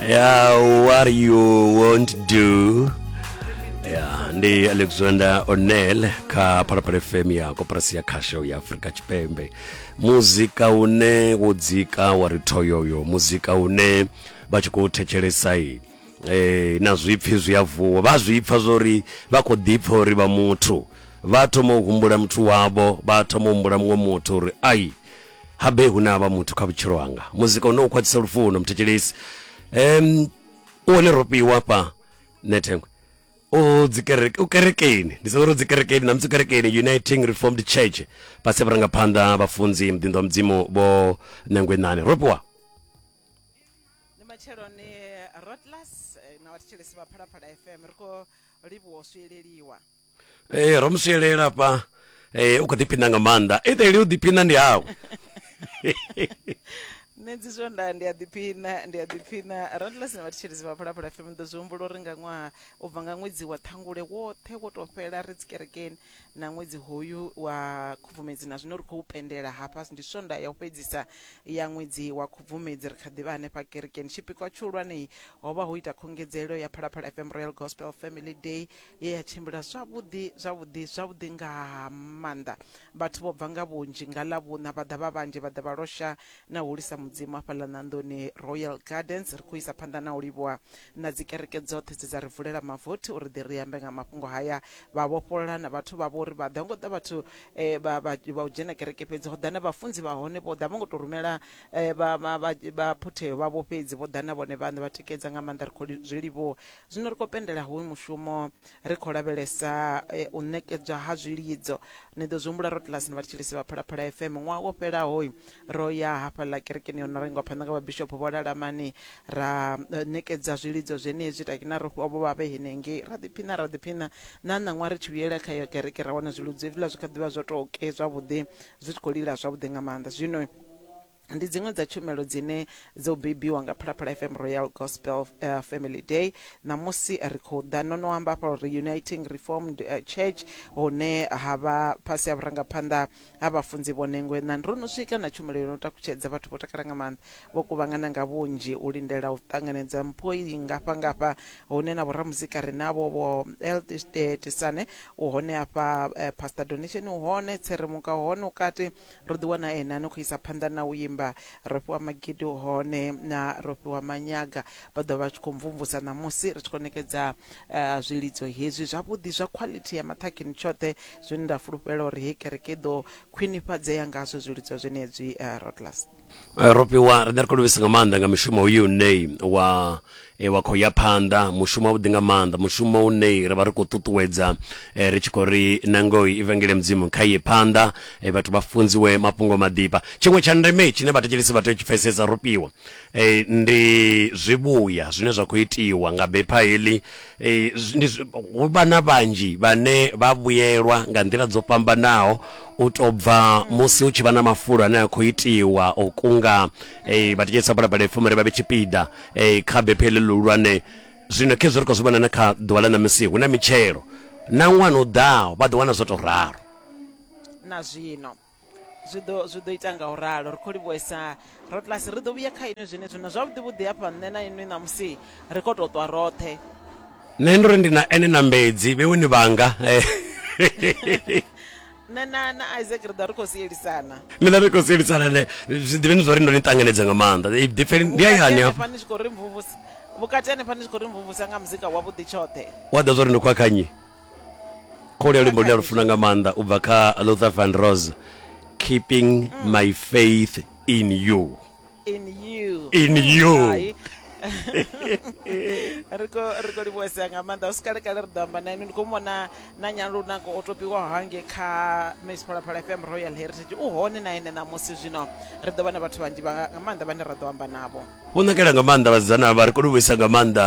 ya what you won't do ya ndi alexander onel kha phalaphala fm ya koporasi ya khasho ya afurika tshipembe muzika une wo dzika wa ri thoyoyo muzika une vha tshi khou thetshelesa i eh, na zwipfi zwi a vuwa vha zwi pfa zwori vha khou ḓipfa uri vha muthu vha thoma u humbula muthu wavho vha thoma u humbula muṅwe muthu uri ai Habe hu na vha muthu kha vhutshilo hanga muzika une u khwaṱhisa lufuno muthetshelesi um u hone ro fhiwa fha nethengwe u dzikereke u kerekeni ndi sedzoro dzikerekeni namusi kerekeni uniting reformed church fhasi ya vharangaphanḓa vhafunzi muḓinḓo wa mudzimu vho nangwenani ro fhiwa ndi matsheloni rotlas eh, na vhathetshelesi vha phalaphala fm ri khou livhuwa u swieleliwa Ee ro mu sielela hafha u kho ḓiphina nga maanḓa etheli u ḓiphina ndi hawe nṋe dzi swonda ndi a ḓiphina ndi a ḓiphina randless na vhathetshelezi vha phalaphala fm ndo zwi humbula uri nga ṅwaha u bva nga ṅwedzi wa ṱhangule woṱhe wo to fhela ri dzi kerekeni na ṅwedzi hoyu wa khubvumedzi na zwino ri khou pendela hafha ndi swonda ya u fhedzisa ya ṅwedzi wa khubvumedzi ri kha ḓivha hanefha kerekeni tshipikwa tshihulwanei ho vha ho ita khungedzelo ya phalaphala fm royal gospel family day ye ya tshimbila zwavhuḓi zwavhuḓi zwavhuḓi nga maanḓa. Vhathu vho bva nga vhunzhi nga Ḽavhuṋa vha ḓa vha vhanzhi vha ḓa vha losha na u hulisa Mudzimu hafhaḽa ṋanḓoni Royal Gardens ri khou isa phanḓa na u livhuwa na dzi kereke dzoṱhe dze dza ri vulela mavothi uri ḓi ri ambe nga mafhungo haya vha vhofholola na vhathu vha vho ri vha ḓa ngo ḓa vhathu eh, vha vha vha u dzhena kereke fhedzi ho ḓa na vhafunzi vha hone vho ḓa vho ngo to rumela eh, vha vha vha- vha phutheyo vha vho fhedzi vho ḓa na vhone vhaṋe vha tikedza nga maanḓa ri khou li- zwi livhuwa zwino ri khou pendela hoyu mushumo ri khou lavhelesa eh, u ṋekedzwa ha zwilidzo ni ḓo zwi humbula ro telasini vha tshilisi vha phalaphala fm ṅwaha wo fhelaho ro ya hafhaḽa kerekeni yo no renga phanḓa nga vhabishopo vho lalamani ra eh, ṋekedza zwilidzo zwenezwi takina ro fhiwa vho vhavhe henengei ra ḓiphina ra ḓiphina na ṋaṅwa ri tshi vhuyela kha yo kereke ra wana zwilidzo hezwiḽa zwi kha ḓivha zwo tou ke zwavhuḓi zwi tshi khou lila zwavhuḓi nga maanḓa zwino ndi dziṅwe dza tshumelo dzine dzo bebiwa nga phalaphala fm royal gospel uh, family day ṋamusi ri khou ḓa no no amba afha uri uniting reformed uh, church hune ha vha fhasi ha vhurangaphanḓa ha vhafunzi vho nengwe na ro no swika na tshumelo yo no takutshedza vhathu vho takala nga maanḓa vho kuvhangana nga vhunzhi u lindela u ṱanganedza mpho i ngafha ngafha hune na vhoramuzika ri navho vho eltisane u hone afha uh, pastor donation u hone tseremuka u hone ukati Ro ḓi wana ene a no khou isa phanḓa na u imba, ro fhiwa magidi hone na ro fhiwa manyaga. Vha ḓovha vha tshi khou mvumvusa ṋamusi ri tshi khou ṋekedza zwilidzo hezwi zwavhuḓi zwa khwaḽithi ya maṱhakheni tshoṱhe, zwine nda fulufhela uri hei kereke i ḓo khwinifhadzea ngazwo zwilidzo zwenezwi. Roodlas. Eh, ro fhiwa riṋe ri khou livhisa nga maanḓa nga mushumo uyu une wa eh, wa khou ya phanḓa mushumo wavhuḓi nga maanḓa mushumo une ra vha ri khou ṱuṱuwedza eh, ri tshi khou ri nangoi ivangeli ya mudzimu kha iye phanḓa eh, vhathu vha funziwe mafhungo maḓifha tshiṅwe tsha ndeme tshine vhathetshelesi vha tea u tshi pfesesa ro fhiwa eh, ndi zwivhuya zwine zwa khou itiwa nga bepha heḽi Ee, zwi- ndi zwi- hu vha na vhanzhi vhane vha vhuyelwa nga nḓila dzo fhambanaho u tou bva musi hu tshi vha na mafulo ane a khou itiwa o kunga eh, vhatshitshisa balabala ipfuma ri vha vhe tshipiḓa eh, kha bephe heḽi luhulwane zwino khezwo ri khou zwi vhona na kha ḓuvha ḽa ṋamusi hu na mitshelo na ṅwana u ḓaho vha ḓo wana zwo tou ralo na zwino zwi ḓo zwi ḓo ita nga u ralo ri khou livhuesa rotlasi ri ḓo vhuya kha inwi zwenezwi na zwavhuḓi vhuḓi hafha nṋe na inwi ṋamusi ri khou tou ṱwa roṱhe nṋe ndo ri ndi na ene na mbedzi vheweni vhanga nṋe na na isaac ri ḓa ri khou sielisana ni ḓa ri khou sielisana ne zwi ḓivheni zwa uri ndo ni ṱanganedza nga maanḓa ḓipfeni ndi hayani hafha ni tshi khou ri mvumvusa vhukati hanefha ni tshi khou ri mvumvusa nga muzika wavhuḓi tshoṱhe wa ḓa zwa uri ndi khwakhanye khole luimbo lune lufuna nga maanḓa u bva kha luther van rose keeping mm. my faith in you in you in you ri khou livhuwesea nga maanḓa hu si kalekale ri ḓo amba na inwi ndi khou mona na nyalunako o topiwaho hange kha miss phalaphala fm royal heritage u hone na ene ṋamusi zwino ri ḓo vha na vhathu vhanzhi nga maanḓa vhane ra ḓo amba navho vho nakela nga maanḓa vhasidzana vha ri khou livhuwesa nga maanḓa